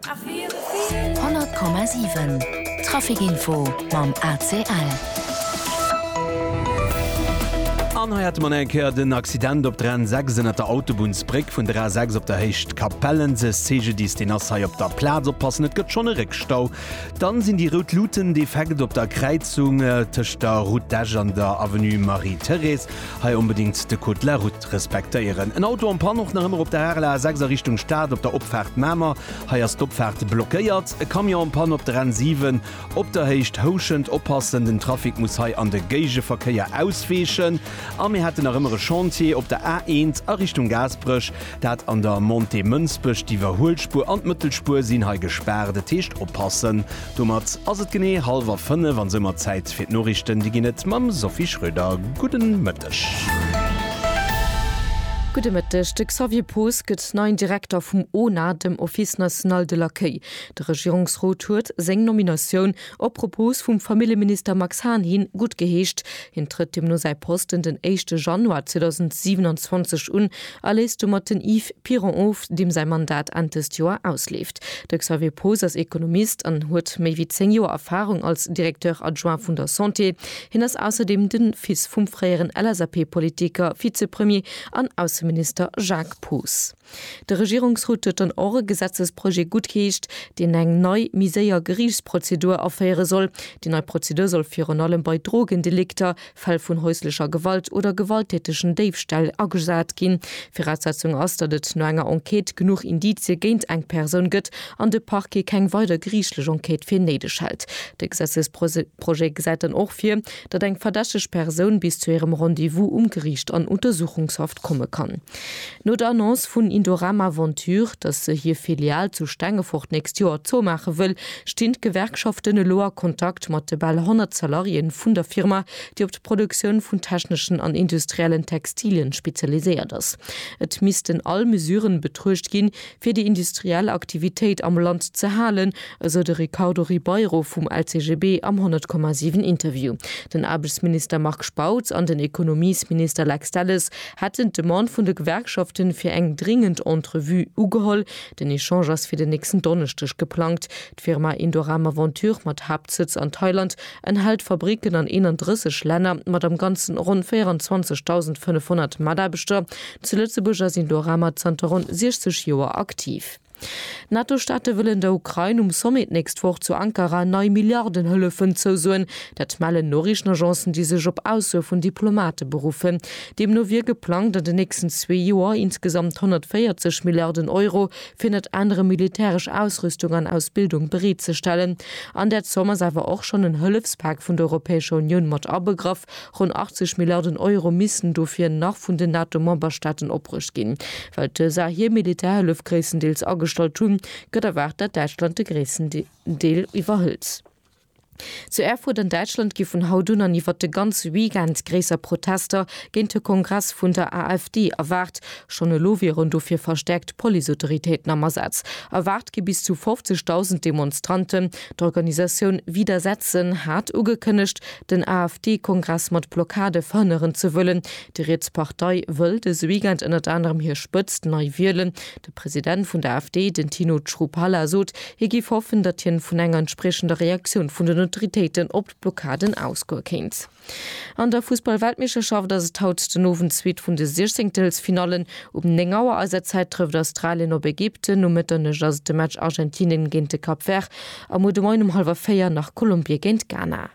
100,7 Trafic Info mam ACL. An hei hate mer nach eng Kéier den Accident op der N6 ënnert der Autobunnsbréck vun der A6 op der Héicht Capellenzes. CGDIS, deen ass hei op der Plaz. Oppassen, et gëtt schonn e Réckstau. Dann sinn déi rout Luuten defekt op der Kräizung tëscht der Route d'Esch an der Avenue Marie-Thérèse. Hei onbedéngt de Code de la Route. ze respektéieren. En Auto am Panne och nach ëmmer op der RLA 6 a Richtung Stad op der Opfaart Mamer. Hei ass d'Opfaart blockéiert. E Camion am Panne op der N 7 op der Héicht Houschent. Oppassen, den Trafic muss hei an de Géigeverkéier ausweechen. A mir hätten nach ëmmer e Chantier op der A 1 a Richtung Gaasperech, dat an der Montée Mënsbech. D'Iwwerhuelspur an d'Mëttelspur sinn hei gespaart. Et heescht oppassen. Domat ass et genee hallwer 5 an soumat Zäit fir d'Norichten. Déi ginn et mam Sophie Schröder. Gudden Mëtten. Mëtteg. Gudde Mëtteg. De Xavier Poos gëtt neien Direkter vum ONA, dem Office National de l'Accueil. De Regierungsrot huet seng Nominatioun, op Propos vum Familljeminister Max Hahn hin, gutt geheescht. Hien trëtt deemno säi Posten den éischte Januar 2027 un a léisst domat den Yves Piron of, deem säi Mandat Enn dëst Joer ausleeft. De Xavier Poos ass Ekonomist an huet méi wéi zéng Joer Erfarung als Directeur adjoint vun der Santé. Hien ass ausserdeem de Fils vum fréieren LSAP-Politiker, Vizepremier an Ausseminister Jacques Poos. De Regierungsrot huet dann och e Gesetzesprojet guttgeheescht, deen eng nei, méi séier Geriichtsprozedur aféiere soll. Déi nei Prozedur soll virun allem bei Drogendelikter, Fäll vun häuslecher Gewalt oder gewalttätegen Déifställ agesat ginn. Viraussetzung ass, datt et no enger Enquête genuch Indizie géint eng Persoun gëtt an de Parquet keng weider geriichtlech Enquête fir néideg hält. De Gesetzesprojet. Projet gesäit dann och vir, datt eng verdächteg Persoun bis zu hirem Rendez-vous um Geriicht an Untersuchungshaft komme kann. No der Annonce vun Indorama Venture, datt se hir Filial zu Stengefort d'nächst Joer zoumaache wëll, stinn d'Gewerkschaften elo a Kontakt mat de bal 100 Salariéen vun der Firma, déi op d'Produktioun vun techneschen an industriellen Textilien spezialiséiert ass. Et missten all Mesuren betruecht ginn, fir déi industriell Aktivitéit am Land ze halen, esou de Ricardo Ribeiro vum LCGB am 100, 7 Interview. Den Aarbechtsminister Marc Spautz an den Ekonomiesminister Lex Delles hätten d'Demande vun de Gewerkschaften fir eng dringend Entrevue ugeholl. Den Echange ass fir den nächsten Donneschdeg geplangt. D'Firma Indorama Venture mat Haaptsëtz an Thailand enthält Fabricken an 31 Länner mat am Ganzen ronn 24.500 Mataarbechter. Zu Lëtzebuerg ass Indorama zanter ronn 60 Joer aktiv. D'NATO-Staate wëllen der Ukrain um Sommet d'nächst Woch zu Ankara nei Milliardenhëllefen zousoen. Dat mellen Noriichtenagencen, déi sech op Aussoe vun Diplomate beruffen. Deemno wier geplangt, an den nächsten zwee Joer insgesamt 140 Milliarden Euro fir net anere militäresch Ausrüstung an Ausbildung bereet ze stellen. An där Zomm ass awer och schonn en Hëllefspak vun der Europäescher Unioun mat abegraff. Ronn 80 Milliarden Euro missten dofir nach vun den NATO-Memberstaaten opbruecht ginn. Well d'USA hir Militärhëllef gréisstendeels agestallt hunn, gëtt erwaart, datt Däitschland de gréissten Deel iwwerhëlt. Zu Erfurt an Däitschland gi vun haut un an iwwert de ganze Weekend gréisser Protester géint de Kongress vun der AfD erwaart. Schonn elo wieren dofir verstäerkt Policeautoritéiten am Asaz. Erwaart gi bis zu 50.000 Demonstranten. D'Organisatioun Widersetzen hat ugekënnegt, den AfD-Kongress mat Blockade verhënneren ze wëllen. Déi riets Partei wëll dëse Weekend ënnert anerem hir Spëtzt nei wielen. De President vun der AfD, den Tino Chrupalla, sot, hie géif hoffen, datt hien vun enger entspriechender Reaktioun vun den Autoritéiten op d'Blockaden ausgoe kéint. An der Fussball-Weltmeeschterschaft ass et haut den Owend d'zweet vun de Siechzéngtelsfinallen. Um 9 Auer eiser Zäit trëfft Australien op Ägypten, um Mëtternuecht ass et de Match Argentinien géint de Cap Vert a muer de Moien um hallwer 4 nach Kolumbie géint Ghana.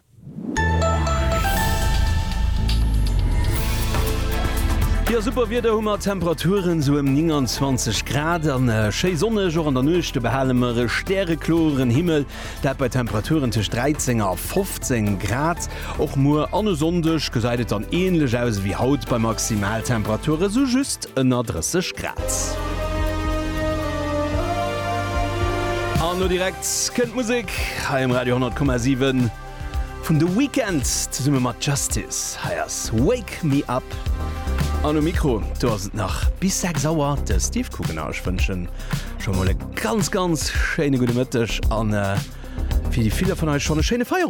Jo, super Wieder hu mer, Temperaturen sou ëm 29 Grad an schéi sonneg. Och an der Nuecht do behale mer e stärekloren Himmel, dat bei Temperaturen tëscht 13 a 15 Grad. Och muer an e Sonndeg gesäit et dann änlech aus ewéi haut bei Maximaltemperature sou just ënner 30 Grad. An lo direkt kënnt d'Musek hei um Radio 100,7 vun The Weeknd zesumme mat Justice. Hei ass Wake Me Up. An um Mikro, do ass et nach bis 6 Auer de Steve Coogan a ech wënschen scho mol e ganz, ganz schéine gudde Mëtteg an fir déi ville vun eis schonn e schéine Feierowend.